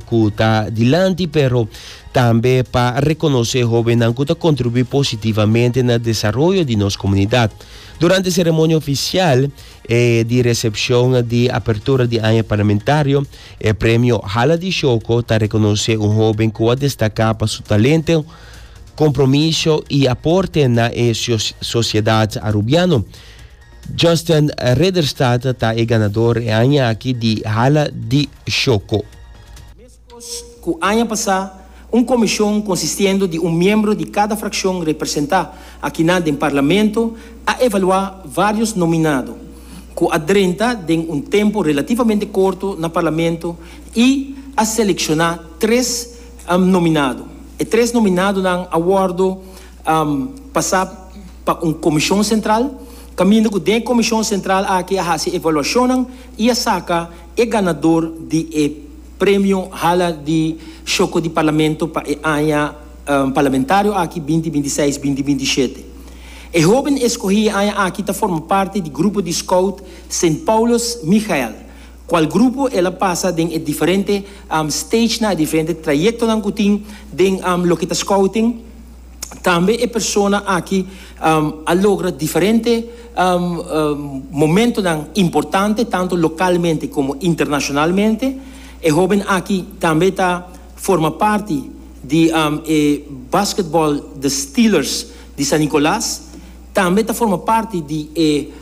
cu ta dilanti pero tambe pa reconoce hobennan cu ta contribui positivamente na desaroyo di nos comunidad. Durante ceremonia oficial e di recepcion di apertura di aña parlamentario, e premio Hala di Shoco ta reconoce un hoben cu a destaca pa su talento, compromiso y aporte na e sociedad Arubiano. Justin Ridderstad ta e ganador e aña aki di Hala di Shoko. Meskos ku aña pasá, un komishon konsistiendo di un miembro di kada frakshon representá akinan den Parlamento a evaluá vários nominado ku a drenta den un tempu relativamente korto na Parlamento i a selekshona tres nominado. E tres nominadonan a wòrdu pasa pa un komishon sentral, kaminda ku den komishon sentral aki a hasi evaluashonnan i a saka e ganador di e premio Hala di Shoko di Parlamento pa e aña parlamentario aki binti binti seis, binti binti shete. E hóben eskohí e aña aki ta forma parti di grupo di skout Sint Paulus Michael. Cual grupo el a pasa den e diferente stagenan, e diferente trayectonan cu tin den loke ta scouting. Tambe e persona aki a logra diferente momentonan importante tanto localmente como internacionalmente. E hoben aki tambe ta forma parti di e basketbal The Steelers di San Nicolas. Tambe ta forma parti di e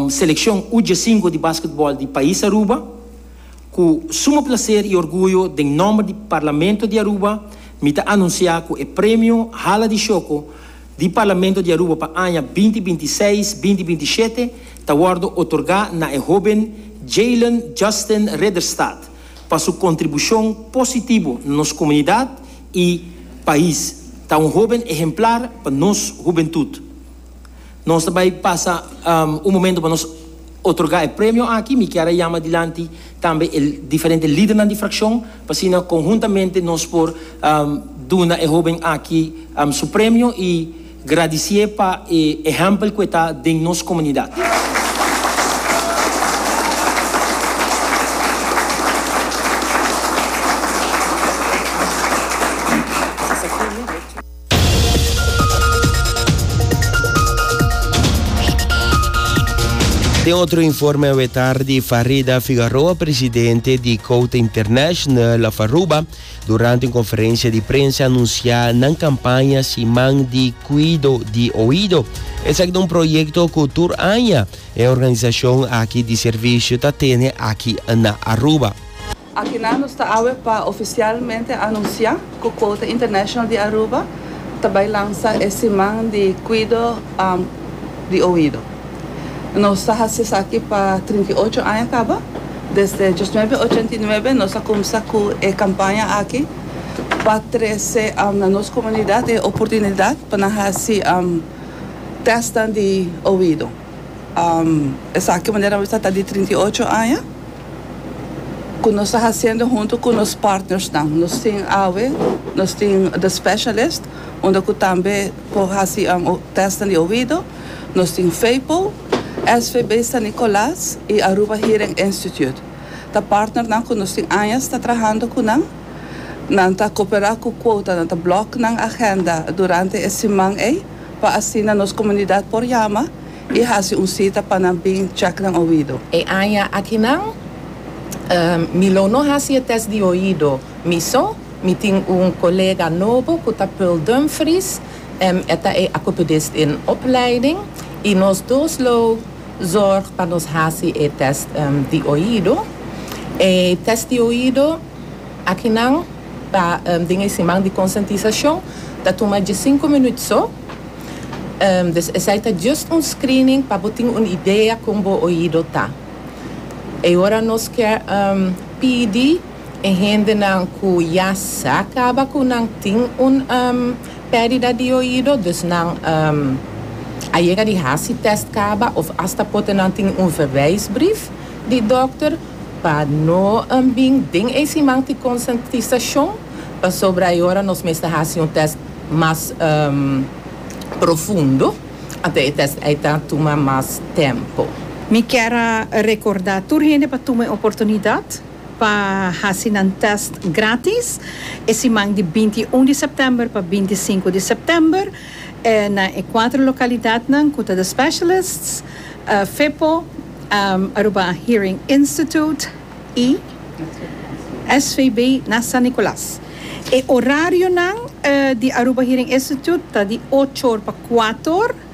selekshon U-djasinko di basketbòl di pais Aruba. Ku suma plaser i orguyo den nòmber di Parlamento di Aruba mi ta anunsiá ku e Premio Hala di Shoko di Parlamento di Aruba pa aña binti binti i seis, binti binti i shete ta wòrdu otorgá na e hóben Jaylen Justin Ridderstad pa su kontribushon positibu na nos komunidat i pais ta un hoben ehemplar pa nos hubentut. Nos ta bai pasa un momento pa nos otorga e premio aki. Mi kier a yama dilanti tambe e diferente lidernan di frakshon pa asina konhuntamente nos por duna e hoben aki su premio i. Gradicié pa e ehempel cu e ta den nos comunidad. Den otro informe awe tardi, Farida Figaroa, presidente di Cauta International of Aruba, Durante un conferencia di prensa anuncia nan campaña Siman di Cuido di Oido. Esaki ta un proyecto cu tur aña e organisacion aki di servicio ta tene aki na Aruba. Akinan nos ta awe pa oficialmente anuncia cu Quota International di Aruba ta bay lansa e Siman di Cuido. di oido. Nos ta hasi esaki pa trinta i ocho aña kaba. Desde dies nuebe ochenta i nuebe nos a kumsa ku e kampaña aki pa trese na nos komunidat e oportunidat pa nan hasi tèstnan di oido. Esaki manera awes ta ta di trinta i ocho aña ku nos ta hasiendo huntu ku nos partnersnan. Nos tin awe nos tin The Specialist unda ku tambe. Por hasi un test den di oido, nos tin Vpo, SVB San Nicolas y Aruba Hearing Institute. Ta partnernan cu nos tin añas ta trahando cu nan. Nan ta coopera cu Quota, nan ta block nan agenda durante e siman ey pa asina nos comunidad por yama y hasi un cita pa nan bin check nan oido. E aña akinan mi lo no hasi e test di oido miso. Mi tin un colega nobo cu ta Pearl Dumfries, em e ta e acopedist den opleiding y nos dos lo zorg pa nos haci e test di oido. E test di oido akinan ta den e siman di consentisacion, ta tuma diecinco minuut so, dus esai ta just un screening pa bo tin un idea con bo oido ta. E ora nos kier pidi. E hendenan ku ya sa kaba ku nan tin un perdida di oido, dus nan a yega di hasi test kaba of asta pote nan tin un verwijsbrief di dokter pa no bin den e siman tin konsientisashon pasobra e ora nos mester hasi un test mas profundo anto e test ei ta tuma mas tempo. Mi kier a rekorda tur hende pa tuma e oportunidat. pa hasi nan tèst grátis e siman di binti i un di sèptèmber pa binti i sinku di sèptèmber na e kuater lokalidatnan ku ta The Specialists, FEPO, Aruba Hearing Institute i SVB na San Nicolas. E orarionan di Aruba Hearing Institute ta di ocho or pa kuater or.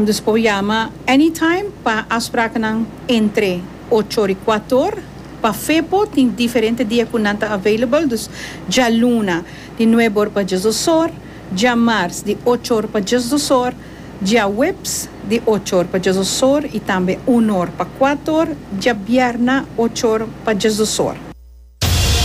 Dus por yama anytime pa afsprakennan entre ocho ori kuatu or. Pa Fepo tin diferente dia ku nan ta available, dus djaluna di nuebe or pa dies dos or, djamars di ocho or pa dies dos or, djaweps di ocho or pa dies dos or i tambe unu or pa kuatu or, djabierna ocho or pa dies dos or.